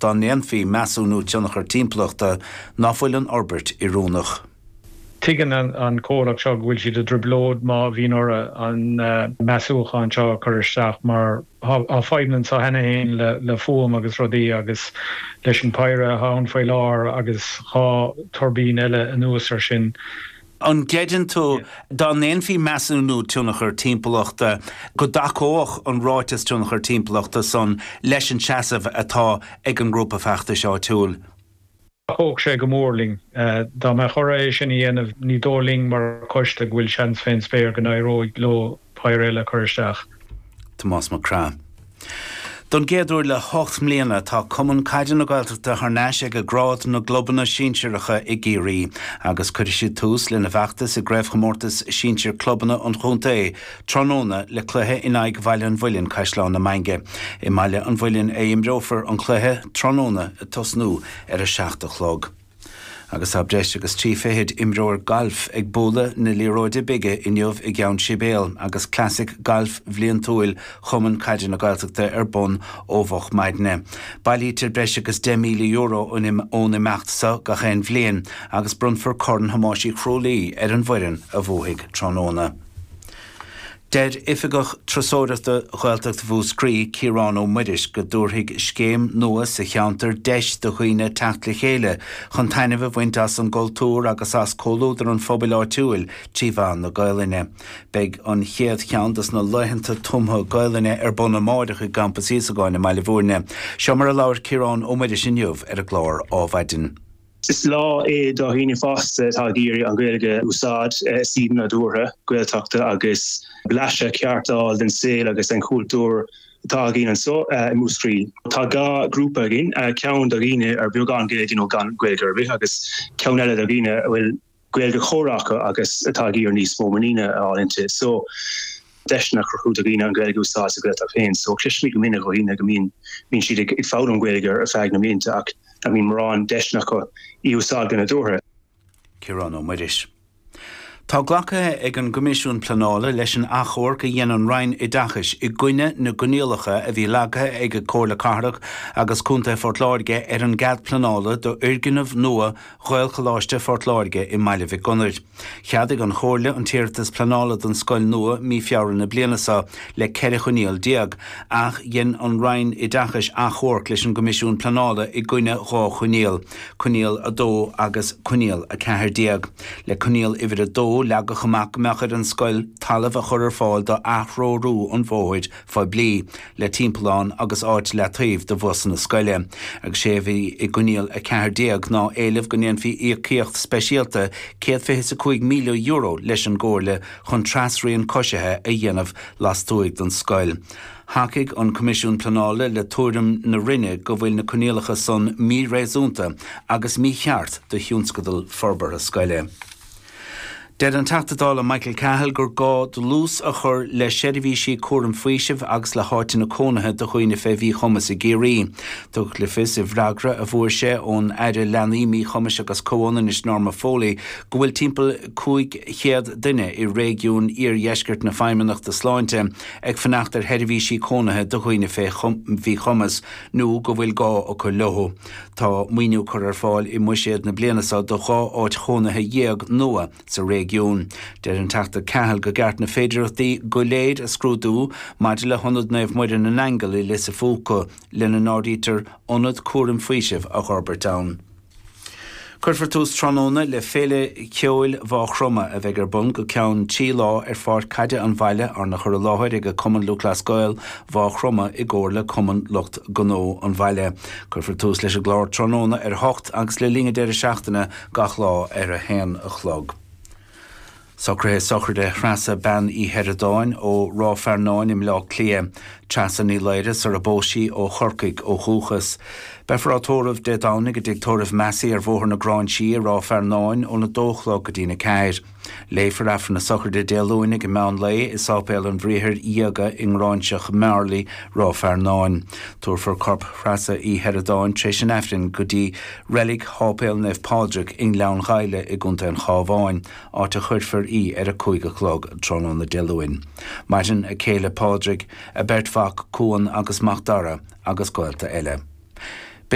dá ndéanfaí measúnú tionchar timpeallachta, ná fuil an fhorbairt oiriúnach. Tuigeann an comhlacht seo go bhfuil siad i dtrioblóid má bhíonn orthu an measúchán seo a chur isteach mar tá fadhbanna anseo cheana féin le fuaim agus rudaí agus leis an bpéire atá ann faoi láthair agus dhá tuirbín eile anuas air sin. An gcreideann tú, dá ndéanfaí measúnú tionchair timpeallachta, go dtacódh an ráiteas tionchair timpeallachta san leis an seasamh atá ag an ngrúpa feachtais áitiúil? Thacódh sé go mór linn. Dá mbeadh orthu é sin a dhéanamh, ní dóigh linn mar choiste go bhfuil seans fén spéir go n-éireoidh leo péire eile a chur isteach. Tomás Mac Craith. Don gcéad uair le hocht mbliana tá Cumann Caide na Gaeltachta thar n-ais ag grád na gclubanna sinsearacha i gCiarraí agus cuirfidh siad tús lena bhfeachtas i gCraobhchomórtas Sinsir Clubanna an Chontae tráthnóna le cluiche in aghaidh Bhaile an Mhuilinn, Caisleán na Mainge. I mBaile an Mhuilinn a imreofar an cluiche tráthnóna ag tosnú ar a seacht a chlog. Agus tá breis agus trí fichid imreoir gailf ag bualadh na liathróide bige inniu i gCeann Sibéal agus Classic Gailf bliantúil Chumann Caide na Gaeltachta ar bun ó mhoch maidne. Bailítear breis agus €10,000 ón imeacht seo gach aon bhliain agus bronnfar Corn Thomáis Uí Chrualaoi ar an bhfoireann a bhuafaidh tráthnóna. Deir Oifigeach Turasóireachta Ghaeltacht Mhúscraí, Ciarán Ó Muiris, go dtabharfaidh scéim nua sa cheantar deis do dhaoine teacht le chéile chun taitneamh a bhaint as an gcultúr agus as comhluadar an phobail áitiúil trí mheán na Gaoluinne. Beidh an chéad cheann de na laethanta tumtha Gaoluinne ar bun amárach i gCampas Íosagáin i mBaile Mhúirne. Seo mar a labhair Ciarán Ó Muiris inniu ar an gclár Ádhmhaidin. Is lá é do dhaoine fásta atá ag iarraidh an Ghaeilge a úsáid i suíomh nádúrtha Gaeltachta agus blaiseadh ceart d'fháil den saol agus den chultúr atá againn anseo i Múscraí. Tá dhá ghrúpa againn, ceann do dhaoine ar beagán Gaeilge nó gan Ghaeilge ar bith agus ceann eile do dhaoine a bhfuil Gaeilge chomhrá acu agus atá ag iarraidh níos mó muiníne a fháil inti. So deiseanna a chruthú do dhaoine an Ghaeilge a úsáid sa Ghaeltacht féin. So cloisimid go minic ó dhaoine go mbíonn mbíonn siad ag foghlaim Gaeilge ar feadh na mblianta ach nach mbíonn mórán deiseanna acu í a úsáid go nádúrtha. Ciarán Ó Muiris. Tá glactha ag an gCoimisiún Pleanála leis an achomharc a dhein an Roinn Oideachais i gcoinne na gcoinníollacha a bhí leagtha ag Comhairle Cathrach agus Contae Phort Láirge ar an gcead pleanála d'fhoirgneamh nua Ghaelcholáiste Phort Láirge i mBaile Mhic Gonair. Cheadaigh an Chomhairle an t-iarratas pleanála don scoil nua mí Feabhra na bliana seo le 14 choinníoll, ach dhein an Roinn Oideachais achomharc leis an gCoimisiún Pleanála i gcoinne dhá choinníoll, Coinníoll 2 agus Coinníoll 14. Le Coinníoll Uimhir 2, leagadh amach go mbeadh ar an scoil talamh a chur ar fáil do atreorú an bhóthair phoiblí, le timpeallán agus áit leataobh do bhusanna scoile, agus sé bhí i gcoinníoll 14 ná éileamh go ndéanfaí íocaíocht speisialta céad fiche is a cúig míle euro leis an gComhairle chun trasrian coisithe a dhéanamh lastuaidh den scoil. Thacaigh an Coimisiún Pleanála le tuairim na Roinne go bhfuil na coinníollacha san míréasúnta agus mícheart do thionscadal forbartha scoile. Deir an Teachta Dála Michael Cahill gur gá dlús a chur le seirbhísí cúraim faoisimh agus le háiteanna cónaithe do dhaoine fé mhíchumas i gCiarraí. Tugadh le fios i bhfreagra a fuair sé ón Aire Leanaí, Míchumais agus Comhionannais Norma Foley go bhfuil timpeall 500 duine i réigiún iardheiscirt na Feidhmeannachta Sláinte ag fanacht ar sheirbhísí cónaithe do dhaoine fé mhíchumas nó go bhfuil gá acu leo. Tá maoiniú curtha ar fáil i mbuiséad na bliana seo do dhá áit chónaithe dhéag nua sa réigiún. Deir an Teachta Cahill gur ceart na féidearthachtaí go léir a scrúdú maidir le hIonad Naomh Muire na nAingeal i Lios a Phúca, lena n-áirítear ionad cúraim faoisimh a dh'fhorbairt ann. Cuirfear tús tráthnóna le Féile Ceoil Mhaigh Chromtha a bheidh ar bun go ceann trí lá ar pháirc caide an bhaile, arna chur i láthair ag Cumann Lúthchleas Gael Mhaigh Chromtha i gcomhar le Cumann Lucht Gnó an bhaile. Cuirfear tús leis an gclár tráthnóna ar a hocht agus le linn an deireadh seachtaine gach lá ar a haon a chlog. Socruithe sochraide Threasa Bean Uí Sheireadáin ó Ráth Fearnáin i mBleá Cliath, Treasa Ní Laoire sarar phós sí, ó Chorcaigh ó dhúchas. Beifear á tórramh Dé Domhnaigh i dTigh Tórraimh Massey ar Bhóthar na Gráinsí i Ráth Fearnáin óna dó a chlog go dtín a ceathair. Léifear Aifreann na Sochraide Dé Luain ag an meán lae i Sáipéal an Bhriathair Dhiaga i nGráinseach Mheárlaí, Ráth Fearnáin. Tabharfar corp Threasa Uí Sheireadáin tréis an Aifrinn go dtí reilig Sháipéal Naomh Pádraig i nGleann Ghaibhle i gContae an Chábháin. áit a chuirfear í ar a cúig a chlog tráthnóna Dé Luain. Maireann a céile Pádraig, a beirt mhac Cuan agus Macdara agus gaolta eile.